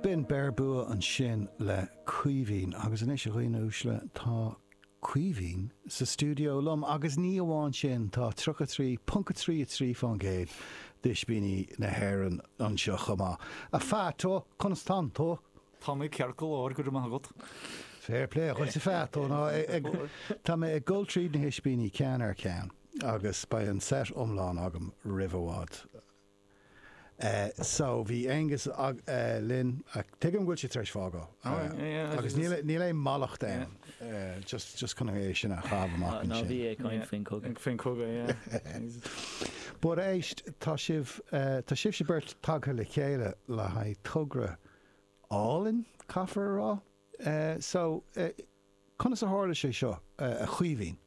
B'in Beir Bua ansin le Caoimhín. Agus anois, a dhaoine uaisle, tá Caoimhín sa stiúideo liom agus ní amháin sin, tá 33.33% d'Ispíní na hÉireann anseo chomh maith. A Pheaito, conas tá tú? Tá mé ceart go leor, go raibh maith agat. Fair play duitse, a Phato. Nó, tá mé ag dul tríd na hIspíní ceann ar cheann agus beidh an set iomlán agam roimh i bhfad. so bhí Aonghus linn ach tuigim go bhfuil sé tar éis fágáil agus níl aon mallacht ann just just chun é sin a chaitheamh amach ansin. Ná bí ag caint faoin cogadh. faoin cogadh yeah. But éist tá sibh tá sibhse beirt tagtha le chéile le haghaidh togra álainn caithfear a rá so conas a tharla sé seo a Chaoimhín?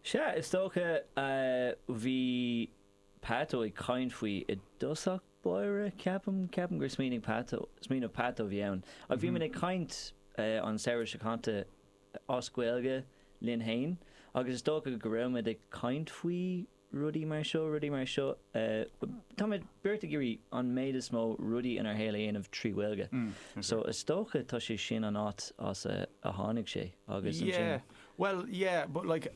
Is ea, is dócha. Bhí Pato ag caint faoi i dtosach báire, ceapaim. Ceapaim gur smaoinigh Pato, smaoineamh Pato a bhí ann. Ach bhí muid ag caint an samhradh seo caite as Gaeilge linn fhéin agus is dócha go raibh muid ag caint faoi, rudaí mar seo, rudaí mar seo. Táimid beirt ag iarraidh an méid is mó rudaí inár shaol a dhéanamh trí Ghaeilge. So is dócha tá sé sin an áit as a tháinig sé agus ansin. Yeah, bhuel, yeah, but like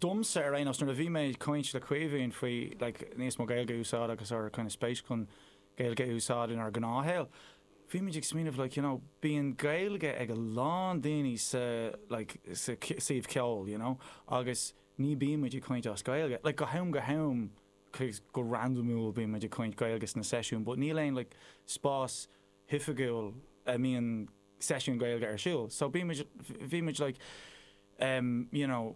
domsa ar aon nós nuair a bhí mé ag caint le Caoimhín faoi like níos mó Gaeilge a úsáid agus ár gcineál spéis chun Gaeilge a úsáid inár ngnáthshaol, bhí muid ag smaoineamh like, you know, bíonn Gaeilge ag a lán daoine sa like sa suíomh ceoil, you know, agus. ní bíonn muid ag caint as Gaeilge. Like, go ham go ham, go randamúil bíonn muid ag caint Gaeilge sna seisiúin but níl aon like spás hoifigiúil a mbíonn seisiúin Gaeilge ar siúl so bíonn muid, bhí muid like em you know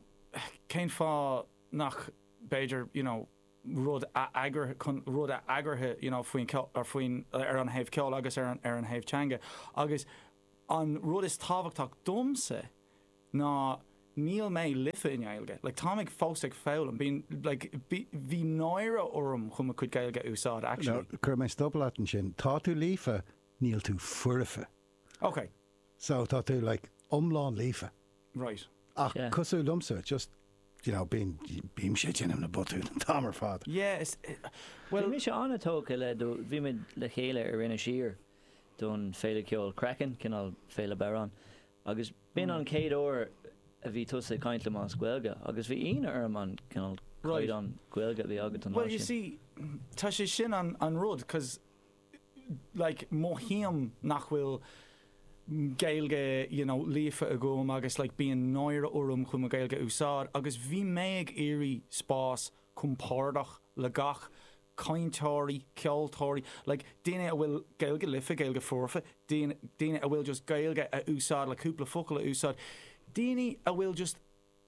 cén fáth nach b'fhéidir you know rud a eagruthe, chun rud a eagruthe you know faoin ceol, faoin, ar an thaobh ceoil agus ar an thaobh teanga agus an rud is tábhachtach domsa ná níl mé líofa i nGaeilge, like táim ag fós ag foghlaim, bíonn like bhí bhí náire orm chun mo chuid Gaeilge a úsáid no actually. cuirfidh mé stop leat ansin, tá tú líofa, níl tú foirfe. Ok. So tá tú like iomlán líofa. Right. Ach Yeah. cosúil liomsa, just you know bíonn bímse ag déanamh na botúin an t-am ar fad. Yeah, is eh, Bhí well mise an-tógtha le do bhí muid le chéile ar Inis Oírr don féile ceoil Craiceann, cineál féile bodhrán agus B'in an chéad uair a bhí tusa ag caint liom as Gaeilge, agus bhí ionadh orm an cineál caighdeán Gaeilge a bhí agat an lá sin. Bhuel, you see, tá sé sin an rud, cause, like, mothaím nach bhfuil Gaeilge, you know, líofa agam agus, like, bíonn náire orm chun mo Ghaeilge a úsáid, agus bhí mé ag iarraidh spás compordach le gach cainteoirí, ceoltóirí, like daoine a bhfuil Gaeilge liofa, Gaeilge foirfe, daoine a bhfuil just Gaeilge a úsáid le cúpla focal a úsáid, daoine a bhfuil just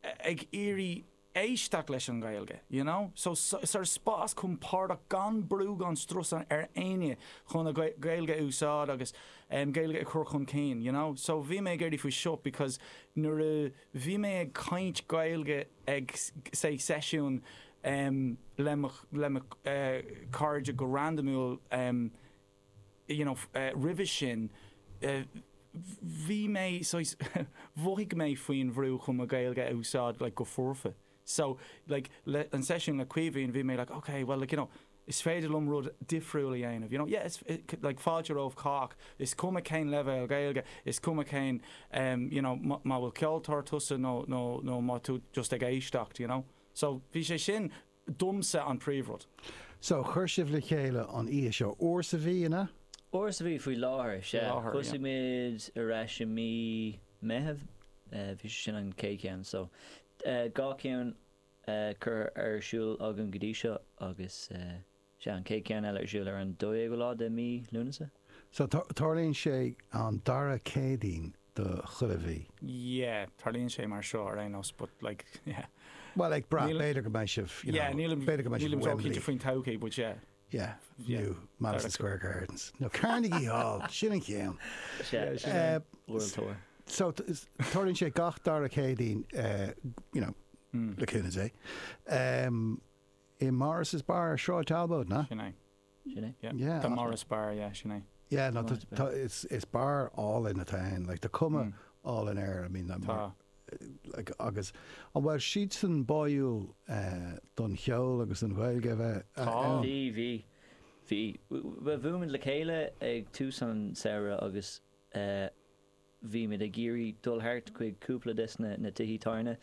ag iarraidh éisteacht leis an nGaeilge, you know. So sort of spás compordach gan brú gan strus ar éinne chun a Gaeilge a úsáid agus Gaeilge a chur chun cinn, you know. So bhí mé ag iarraidh faoi seo because nuair a. Bhí mé ag caint Gaeilge ag sé seisiún le mo chairde go randamúil you know roimhe sin. Bhí mé saghas mhothaigh mé faoin bhrú chun mo Ghaeilge a úsáid like go foirfe. So, like, le, an seisiún le Caoimhín, bhí mé like, ok, bhuel, like, you know, is féidir liom rud difriúil a dhéanamh, you know, yeah, is, like, fáilte roimh chách, is cuma cén leibhéal Gaeilge, is cuma cén, em, you know, má, má bhfuil ceoltóir tusa nó, nó, nó má tú just ag éisteacht, you know. So, bhí sé sin, domsa, an príomhrud. So, chuir sibh le chéile an oíche seo, uair sa mhí, an ea? Uair sa mhí faoi láthair, sea. láthair, yeah. Thosaigh muid ar ais i mí Meitheamh, eh, bhí sé sin an chéad cheann, so. dhá cheann curtha ar siúl agam go dtí seo agus sea, an chéad cheann eile ar siúl ar an 12ú lá de mhí Lúnasa. So, tarlaíonn sé an dara Céadaoin de chuile mhí? Yeah, tarlaíonn sé mar seo ar aon nós but like, yeah. Bhuel, ag brath, b'fhéidir go mbeidh sibh, you know, b'fhéidir go mbeidh sibh i Wembley. Nílim ró-chinnte faoin todhchaí but yeah. Yeah, new Madison Square Gardens. No, Carnegie Hall, sin an ceann. So, tarlaíonn sé gach dara Céadaoin, you know, le cúnamh Dé, i Morris's Bar ar Sráid Talbot, an ea? Sin é. Sin é, yeah. Yeah. The Morris Bar, yeah, sin é. Yeah, no, is beár álainn atá ann, like, tá cuma álainn air, I mean, agus an bhfuil siadsan báúil don cheol agus don Ghaeilge a bheith ann? Bhí, bhí. Bhí. Bhuail muid le chéile ag tús an samhradh agus bhí muid ag iarraidh dul thart chuig cúpla de na tithe tábhairne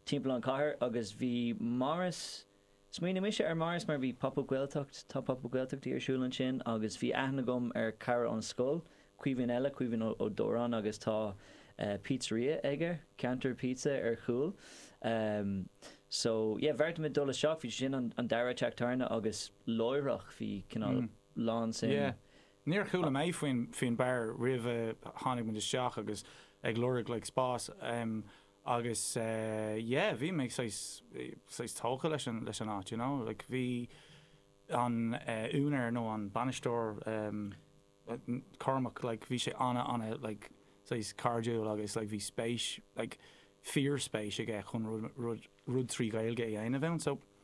timpeall an chathair agus bhí Morris, Smaoinigh mise ar Morris mar bhí Pop Up Gaeltacht, tá Pop Up Gaeltachtaí ar siúl ansin agus bhí aithne agam ar cara ón scoil, Caoimhín eile, Caoimhín Ó Dóráin agus tá pizzeria aige, Ceantar Pizza ar chúl. So, yeah, bheartaigh muid dul isteach, bhí sé sin an dara teach tábhairne agus láithreach bhí cineál lán sin. Yeah. Níor chuala mé faoin faoin beár roimh a tháinig muid isteach agus ag lorg like spás. agus yeah bhí mé saghas saghas tógtha leis an leis an áit you know like bhí an úinéir nó an bainisteoir ehm Cormac like bhí sé ana ana like saghas cairdiúil agus like bhí spéis like fíor spéis aige chun rud rud rud trí Ghaeilge a dhéanamh ann so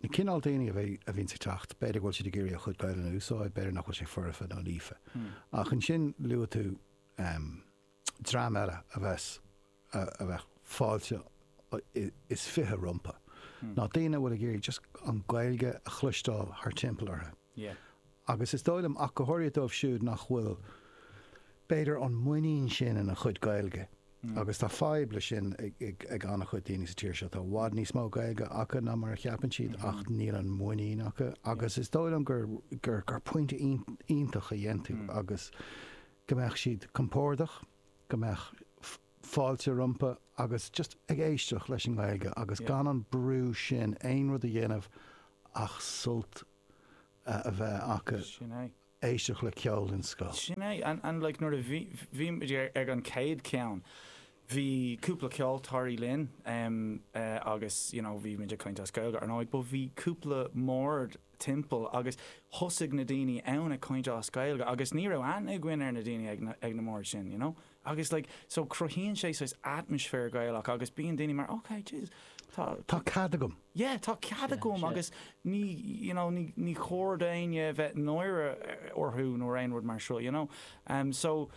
Na cineál daoine a bhíonns ag teacht, b'fhéidir go bhfuil siad ag iarraidh a chuid Gaelainne a úsáid, b'fhéidir nach bhfuil sé foirfe nó líofa. Ach ansin luaigh tú dream eile a bheas, a bheadh fáilte is fiche rompu, ná daoine a bhfuil ag iarraidh just an Ghaeilge a chloisteáil thar timpeall orthu. agus is dóigh liom, ach go háirithe dóibh siúd nach bhfuil, b'fhéidir, an muinín sin ina chuid Gaeilge, agus tá fadhb leis sin ag an-chuid daoine sa tír seo, tá i bhfad níos mó Gaeilge acu ná mar a cheapann siad, ach níl an muinín acu, agus is dóigh liom gur pointe iontach a dhein tú, agus go mbeadh siad compordach, go mbeadh. fáilte rompu agus just ag éisteacht leis an nGaeilge agus gan an brú sin aon rud a dhéanamh ach sult a bheith acu, éisteacht le ceol den scoth. Sin é, and like nuair a bhí, bhí muid ag an gcéad cheann, bhí cúpla ceoltóirí linn agus you know bhí muid ag caint as Gaeilge ar ndóigh but bhí cúpla mbord timpeall agus thosaigh na daoine ann ag caint as Gaeilge agus ní raibh aithne againn ar na daoine ag na mbord sin you know. Agus like so cruthaíonn sé saghas atmaisféar Gaelach agus bíonn daoine mar ok Jesus tá tá cead agam. Yeah tá cead agam agus ní you know ní ní chóir d'éinne bheith náire orthu nó aon rud mar seo you know. Em so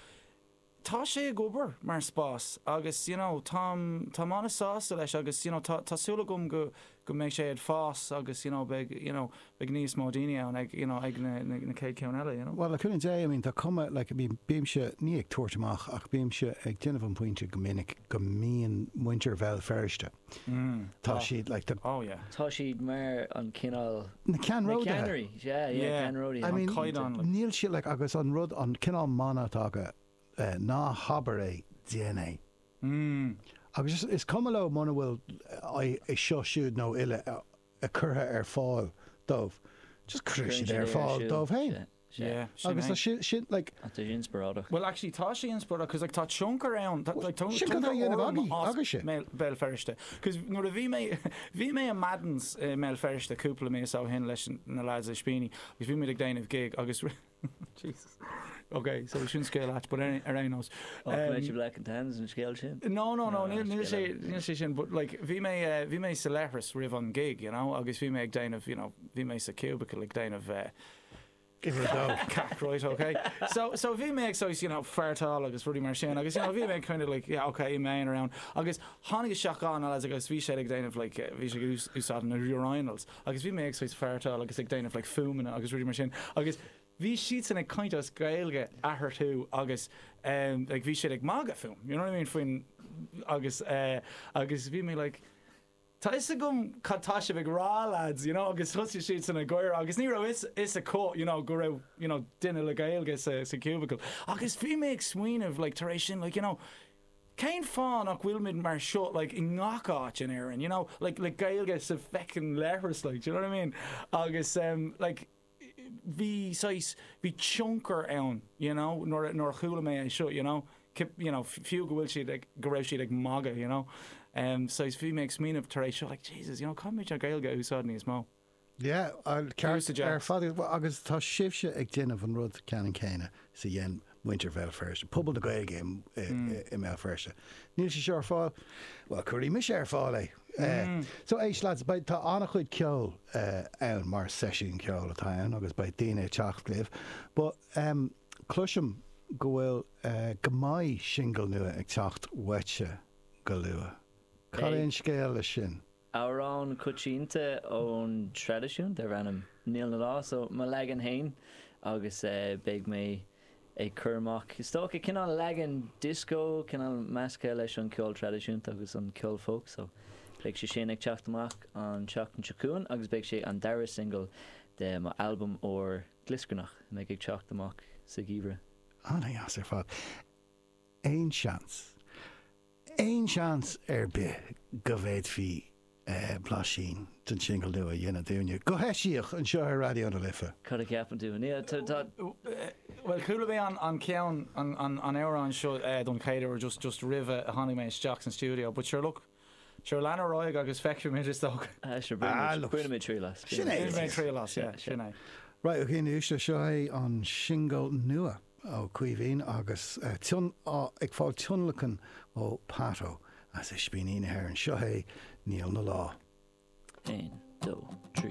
tá sé ag obair mar spás agus you know táim táim an-sásta leis agus you know tá tá súil agam go go mbeidh sé ag fás agus you know beidh you know beidh níos mó daoine ann ag you know ag na na chéad cheann eile you know. Bhuel, le cúnamh Dé, I mean tá cuma like I mean bímse, ní ag tabhairt amach ach bímse ag déanamh an pointe go minic go mbíonn muintir Bhéal Feirste, tá siad like the, oh yeah. tá siad mar an cineál, na ceannródaithe, yeah yeah ceannródaithe, an caighdeán like, níl siad like agus an rud an cineál mana atá acu ná habair é, déan é. Mm. Agus is cuma leo muna bhfuil é seo siúd nó eile curtha ar fáil dóibh. Just cuireann siad é ar fáil dóibh féin. Yeah. Agus tá sé sin like. Tá sé inspioráideach. Well actually tá sé inspioráideach cos like tá tionchar ann tá like tionchar Sin cad a dhéanamh agaí agus sin. Bhéal Feirste. Cos nuair a bhí mé bhí mé i Maddens i mBéal Feirste cúpla mí ó shin leis na lads Ispíní, agus bhí muid ag déanamh gig agus Jesus. Ok, so sin scéal ait, but ar aon nós. Ó, tá mé sibh leconnta thans an scéal sin. No, no, no, níl sé, níl sé sin, but like, bhí mé, bhí mé sa leithreas roimh an gig, you know, agus bhí mé ag déanamh, you know, bhí mé sa cubicle ag déanamh Give it a go. cac, right, ok. So, so bhí mé ag saghas, you know, fartáil agus rudaí mar sin, agus, you know, bhí mé kind of like, yeah, ok, iméin ar ann, agus tháinig isteach cúpla lads agus bhí siad ag déanamh, like, bhí siad ag úsáid na urinals. agus bhí mé ag svaidhpeartáil agus ag déanamh like fuaimeanna agus rudaí mar sin agus bhí siadsan ag caint as Gaeilge eatharthu agus em like bhí siad ag magadh fúm you know what I mean faoin agus eh agus bhí mé like Tá a fhios agam cad tá sibh ag rá lads you know agus thosaigh siadsan ag gáire agus ní raibh a fhios acu you know go raibh you know duine le Gaeilge sa sa cubicle agus bhí mé ag smaoineamh like tar éis sin like you know Cén fáth nach bhfuilimid mar seo like i ngach áit in Éirinn you know like like Gaeilge sa feckin leithreas like do you know what I mean agus em like bhí saghas bhí tionchar ann you know nuair a nuair a chuala mé é seo you know you know fiú go bhfuil siad ag go raibh siad ag magadh you know em saghas bhí mé ag smaoineamh tar éis seo like Jesus you know caithfimid an Gaeilge a úsáid níos mó Yeah, an ceart ar fad agat agus tá sibhse ag déanamh an rud ceannann céanna is a dhéan muintir Bhéal Feirste, pobal na Gaeilge i mBéal Feirste. Níl sé seo ar fáil? Bhuel, cuirfidh mise ar fáil é! So éist lads, tá an-chuid ceoil ann mar seisiún ceoil atá ann agus beidh daoine ag teacht libh but cloisim go bhfuil, go mbeidh singil nua ag teacht uaitse go luath. Cad é an scéal leis sin? Amhrán coitianta ón traidisiún darb ainm 'Níl 'na Lá', so mo leagan fhéin agus beidh mé ag cur amach is dócha cineál leagan disco cineál meascaithe leis an ceol traidisiúnta agus an ceol folk so beidh sé sin ag teacht amach an tseachtain seo chugainn agus beidh sé an dara single de mo albam úr glioscarnach a mbeidh ag teacht amach sa gheimhreadh. Ana dheas ar fad. Aon seans, aon seans ar bith go bhféadfaí blaisín den singil nua a dhéanamh dúinne, go heisiach, anseo ar Raidió na Life? Bhuel, chuala mé an ceann, an amhrán seo don chéad uair just roimh a tháinig mé isteach san stiúideo but sure look, Sure, lean ar aghaidh agus feicfimid, is dócha. Ah, sure, bainimid triail as. Sin é! Bainimid triail as, yeah, sin é. Right, ok, anois, seo é an singil nua ó Caoimhín agus ag fáil tionlacan ó Pato as Ispíní na hÉireann. Seo é Níl 'na lá. 1, 2, 3.